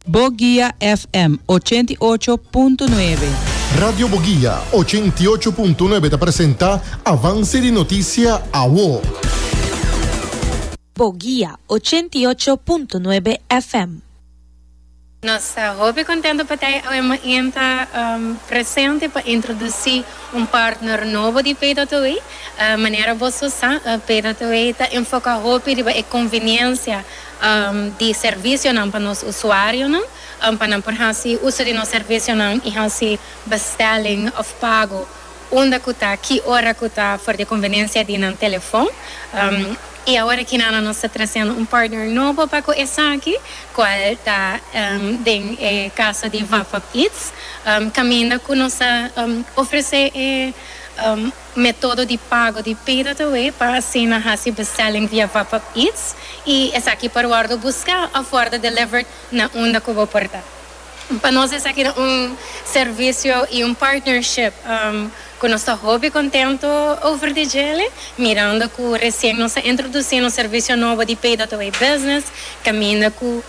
Bogia FM ochenta i ocho punto nuebe. Radio Bogia ochenta i ocho punto nuebe ta presenta Avance di Noticia Awo. Bogia ochenta i ocho punto nuebe FM. Nos ta hopi contento pa ta e awe maenta presente pa introduci un partner nobo di Paydataway. Manera boso sa, Paydataway ta enfoca hopi riba e conveniencia, di servisionan pa nos usuarionan pa nan por hasi uso di nos servisionan i hasi bestelling òf pago unda ku ta, ki ora ku ta for di e konvenencia di nan telefon. I awor aki nan nos ta trasendo un partner nobo pa ku esaki, kual ta den e kaso di Vapap Eats, kaminda ku nos ta ofresé e. Metodo di pago di payda ta wei pa asina hasi bestelling via VapUp Eats y esaki por wordo busca of wordo delivered na unda cu bo por ta. Pa nos esaki ta un servicio y un partnership cu nos ta hopi contento over di djele, mirando cu recien nos a introduci nos servicio nobo di payda ta wei business caminda cu.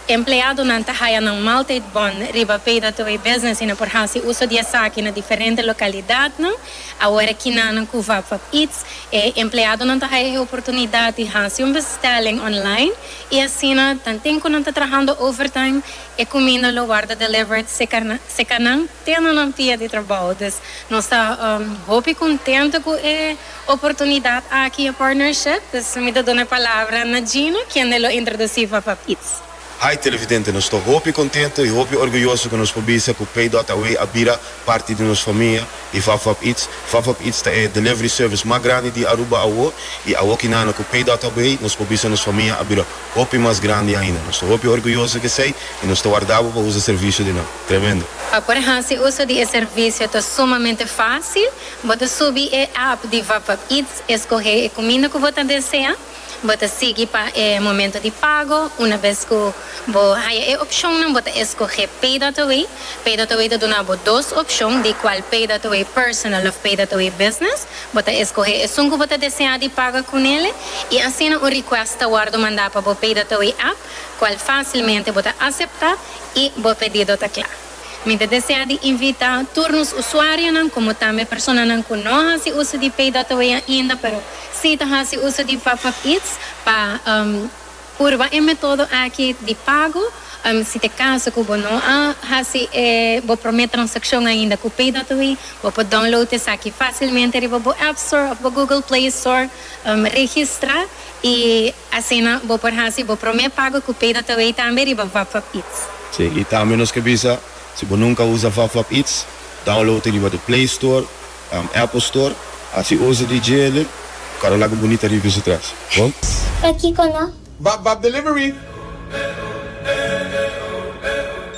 Empleadonan ta haya nan maaltijd bon riba peda tur e businessnan por hasi uso di esaki na diferente lokalidadnan. Awor kinannan ku wak wak eats, e empleadonan ta haya e oportunidat di hasi un bestelling online i asina tanten ku nan ta trahando overtime e kuminda lo warda delivered seka nan te na nan pia di trabou. Dus nos ta hopi kontento ku e. oportunidat aki e partnership, dus mi ta duna e palabra na Gino kende lo introduci Fafá Pizz. Hi Televidente, nos ta hopi contento y hopi orguyoso cu nos por bisa cu Pei Dot Away a bira parti di nos famia di Fafá Pizz. Fafá Pizz ta e delivery service mas grandi di Aruba awo y awo ki nana cu Pei Dot Away nos por bisa nos famia a bira hopi mas grandi ainda. Nos ta hopi orguyoso di esey y nos ta warda bo pa usa servicio di nan. Tremendo! Pa por hasi uso di e servicio ta sumamente facil. Bo ta subi e app di Vapap Eats, eskohé e kuminda ku bo ta desea, bo ta sigui pa e momento di pago, una bes ku bo haya e opshonnan bo ta eskohé Pay That Away, Pay That Away ta duna bo dos opshon di kual Pay That Away Personal òf Pay That Away Business, bo ta eskohé esun ku bo ta desea di paga ku nele i asina un request ta wòrdu mandá pa bo Pay That Away app, kual fásilmente bo ta aseptá i bo pedido ta kla. Mi ta desea di invita tur nos usuarionan como tambe personanan cu no haci uso di Pay Dot Away ainda pero si ta haci uso di Popup Eats pa purba e metodo aki di pago. Si ta e caso cu bo no a haci e bo prome transaccion ainda cu Pay Dot Away, bo por download esaki facilmente riba bo App Store of bo Google Play Store, registra y. Asina bo por hasi bo promé pago ku PayDataWay tambe riba VapVapIts. Sí, i tambe nos ke bisa, si bo nunka a usa VapVapIts, download e riba di Play Store òf Apple Store, hasi uso di djele pa karo laga bunita riba piso tras. Bo. Pakiko no? VapVapDelivery!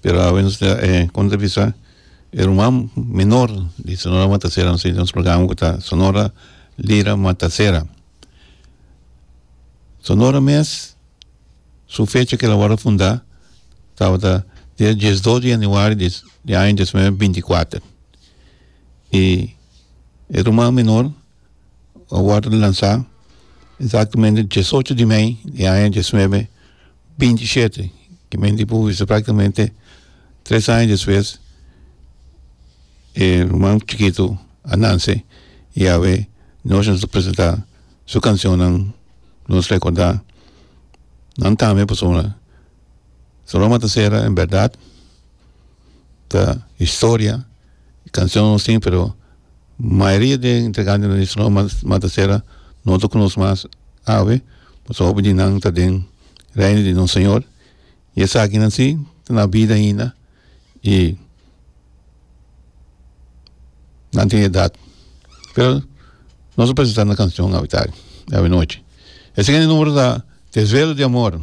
pero awenas ta e konta bisa e ruman menor di Sonora Matasera nos tin un slogan ku ta Sonora Lira Matasera Sonora mes su fecha kila wòrdu fundá tabata dia diesdos di januario di di aña diecinueve binti kuater i e ruman menor a wòrdu lansá exactamente diesocho di mei di aña diecinueve. binti i shete ki men di pui so practicamente tres aña despues e ruman chikitu a nanse i awe nos a presenta su cancionnan nos recorda nan tambe pasobra Saloma Tacera en berdad. ta historia y cancion nos tin pero mayoria den integrante di Solo Mata Serra no ta cu nos mas awe pasobra hopi di nan ta den reino di nos señor y esakinan si ta na bida ainda y nan tin edad pero nos a presenta nan cancion awe tarde y awe nochi e sigue numero ta Desvelo di amor.